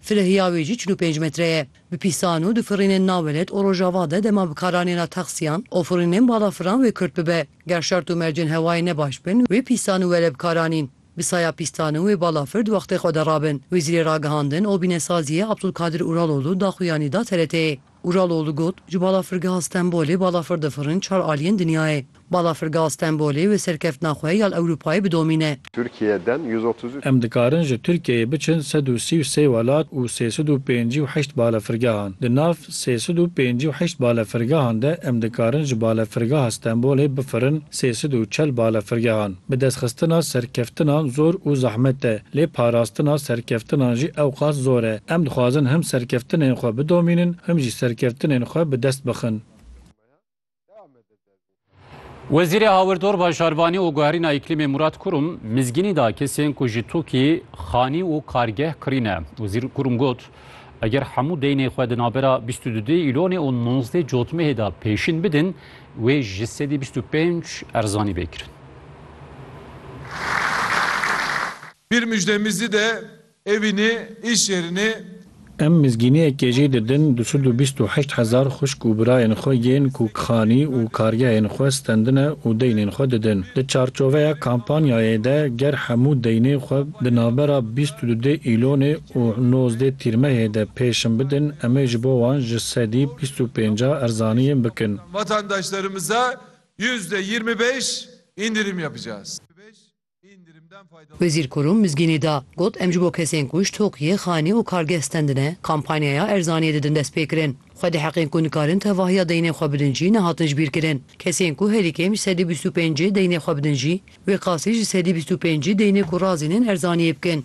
Filihiya wê jî çil û pênc metre ye. Bi pîsan û difirînên nawelet û rojava de dema bi karanên a taksiyan û firînên balafiran wê kurt bibe. Ger şert û mercên hewayê ne baş bin, wê pîsan û were bi karanîn. Bi saya pîstan û wê balafir di wextê xwe de rabin. Wezîrê Ragihandin û Bînesaziyê Abdulkadir Uraloğlu daxuyanî da TRT'ê. Uraloğlu got, Ji Balafirgeha Stenbolê balafir difirin çar aliyên dinyayê. Balafirgeha Stenbolê wê serkeftina xwe ya li Ewropayê bidomîne. Tirkiye den yüz otuz üç. Em dikarin ji Tirkiyeyê biçin sed û sî û sê welat û sê sed û pêncî û heşt balefirgehan. Di nav sê sed û pêncî û heşt balefirgehan de em dikarin ji Balefirgeha Stenbolê bifirin, Sê sed û çel balefirgehan bi destxistina serkeftinan zor û zehmet e, lê parastina serkeftinan jî ewqas zor e. Em dixwazin him serkeftinên xwe bidomînin, him jî serkeftinên xwe bi dest bixin. Wezîrê Hawirdor Bajarbanî û Guherîna Îklîmê Murat Kurum mizgînî da kesên ku ji tokî xanî û kargeh kirîne. Wezîr Kurum got, Eger hemû deynê xwe di navbera bîst û du îlonê û nozdeh cotmehê de pêşîn bidin, wê ji sedî bîst û pênc erzanî bê kirin. Pîr Mujde Mizî de evînê ê şêrinê. Em mizgîniyekê jî didin du sed û bîst û heşt hezar xwişk û birayên xwe yên ku kixanî û kargehên xwe stendine û deynên xwe didin. Di çarçoveya kampanyayê de ger hemû deynê xwe di navbera bîst û du îlonê û nozdeh tîrmehê de pêşin bidin, em ê ji bo wan ji sedî bîst û pênc a erzaniyên bikin. Wezîr Kurum mizgînî da, got, Em ji bo kesên ku ji Tokiyê, xanî û kargeh stendine, kampanyaya erzaniyê didin destpêkirin. Xwe diheqin ku nikarin tevahiya deynên xwe bidin jî nehatin ji bîr kirin. Kesên ku herî kêm ji sedî bîst û pêncê deynê xwe bidin jî, wê qasî ji sedî bîst û pêncî deynê ku razîn in erzaniyê bikin.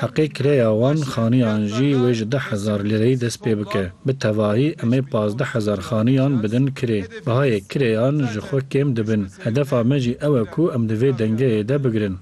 Heqê kirêya wan xaniyan jî wê ji deh hezar lîreyî dest pê bike. Bi tevahî em ê pazdeh hezar xaniyan bidin kirê. Bihayê kirêyan ji xwe kêm dibin. Hedefa me jî ew e ku em di vê dengeyê de bigirin.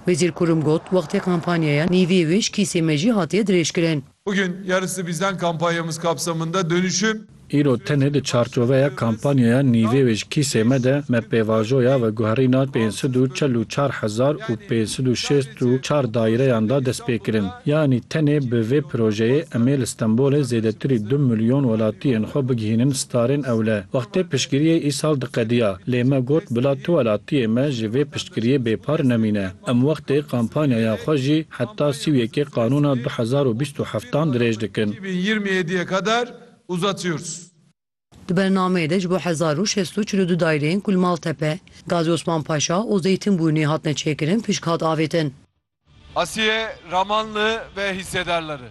Wezîr Kurum got, Wextê kampanyaya nîvê wê ji kîsê me jî hatiye dirêjkirin. Bugün yarısı bizden kampanyamız kapsamında dönüşüm. Îro tenê di çarçoveya kampanyaya Nîvê wê ji kîsê me de me pêvajoya veguherîna pênc sed û çel û çar hezar û pênc sed û şêst û çar daîreyan da dest pê kirin. Yanî tenê bi vê projeyê em ê li Stenbolê zêdetirî du milyon welatiyên xwe bigihînin starên ewle. Wextê piştgiriyê îsal diqediya lê me got bila tu welatiyê me ji vê piştgiriyê bêpar nemîne. Em wextê kampanyaya xwe jî heta sî û yekê qanûna du hezar û bîst û heft an dirêj dikin. Di bernameyê de ji bo hezar û şêst û çil û du daîreyên ku li Maltepe, Gazî Osman Paşa û Zeytinbûrnî hatine çêkirin pişk hat avêtin. Asiye Ramanli ve hîssedarleri.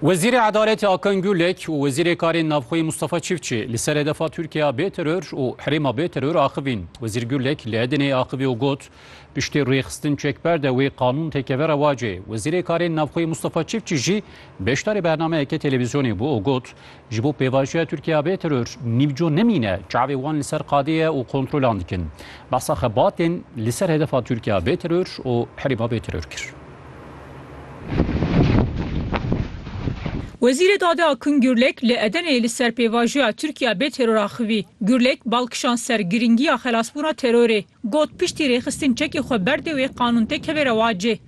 Wezîrê Edaletê Akan Gulek û Wezîrê Karên Navxweyî Mustafa Çiftçi li ser hedefa Tirkiya bê teror û herêma bê teror axivîn. Wezîr Gulek li Edeneyê axivî û got, Piştî rêxistin çekber de wê qanûn têkeve rewacê. Wezîrê Karên Navxweyî Mustafa Çiftçi jî beşdarî bernameyeke televîzyonê bû û got, Ji bo pêvajoya Tirkiye bê teror nîvco nemîne, çavê wan li ser qadê ye û kontrolan dikin. Behsa xebatên li ser hedefa Tirkiye bê teror û herêma bê teror kir. Wezîrê Dadê Akın Gürlek li Edeneyê li ser pêvajoya Tirkiye bê teror axivî. Gürlek bal kişand ser girîngiya xelasbûna terorê. Got, Piştî rêxistin çekê xwe berdê wê qanûn tê kevê rewacê.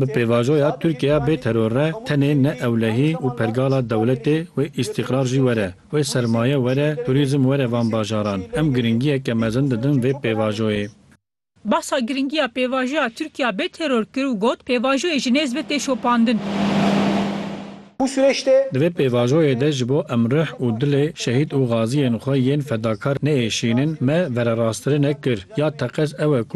Bi pêvajoya Tirkiyeya bê teror re tenê ne ewlehî û pergala dewletê wê îstîqrar jî were, wê sermaye were, turîzm were van bajaran. Em giringiyeke mezin didin vê pêvajoyê. Bahsa giringiya pêvajoya Tirkiyeya bê teror kir û got, Pêvajoyê ji nêz ve tê şopandin. Bu süreç de. Di vê pêvajoyê de ji bo em rih û dilê şehîd û gaziyên xwe yên fedakar nêêşînin, me vererastirinek kir. Ya teqez ew e ku.